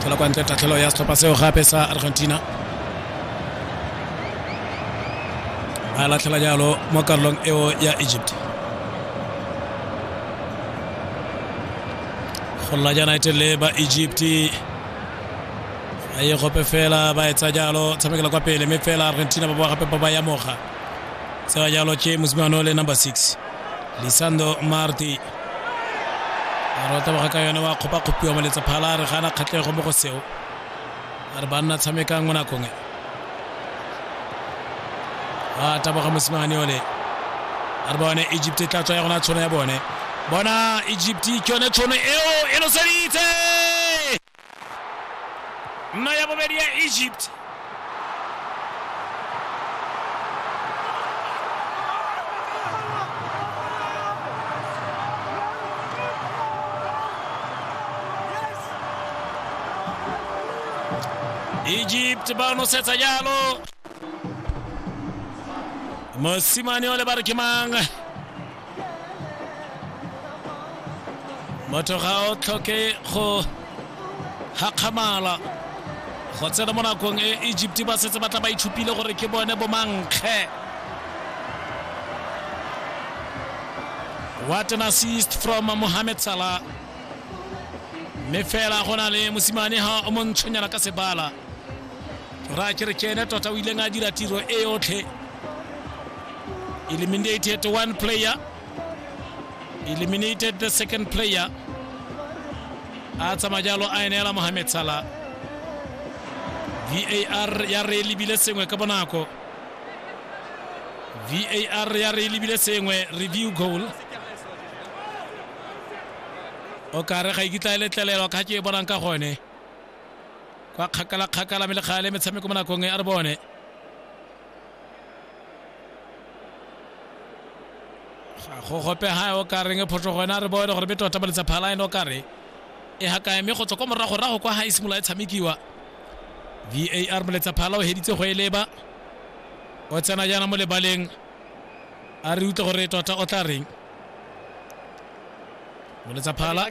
tlhola kwa ntle tatlhelo ya setlhopha seo gape sa argentina ba latlhela jalo mo karolong eo ya egypt golla jana e telele ba egypt a ye gope fela ba etsa jalo tshamekela kwa pele mme fela argentina ba boa gape ba ba yamoga tseba jalo ke mosimano le number six lisando marty a re o taboga ka yone wa kgopakgopiwa moletsephala a re gana kgatlhego mo go seo a re banna tshamekang mo nakong e a taboga mosimane yone a re bone egypt e tla tswa ya gona tshono ya bone bona egypt ke yone tshono eo e noseditse mno ya bobedi ya egypt egypt ba nosetsa jalo mosimane o le ba re ke mang motho ga o tlhoke go gakgamala go tsena mo nakong e egypt ba setse ba tla ba ithupile gore ke bone bomankge what an assist from mohamed salah mme fela go na le mosimane ga o montshonyana ka sebala ra ke re kene tota o ileng a dira tiro e yotlhe eliminated one player eliminated the second player a tsamaya jalo a eneela mohamed sala var ya re e lebile sengwe ka bonako var ya re e lebile sengwe review goal o kare ga ikitla e letlelelwa ka ke e bonang ka gone kwa kgakala-kgakala mme legale metshameko mo nakong e a re bone ga go gope ga o ka reng phoso gone a re bone gore be tota baletsa phala ene o ka re e gakae mme go tswa kwa moragorago kwa ga e simolola e tshamekiwa var moletsa phala o heditse go e leba o tsena jaana mo lebaleng a re utlwe gore tota o tla reng moletsa phala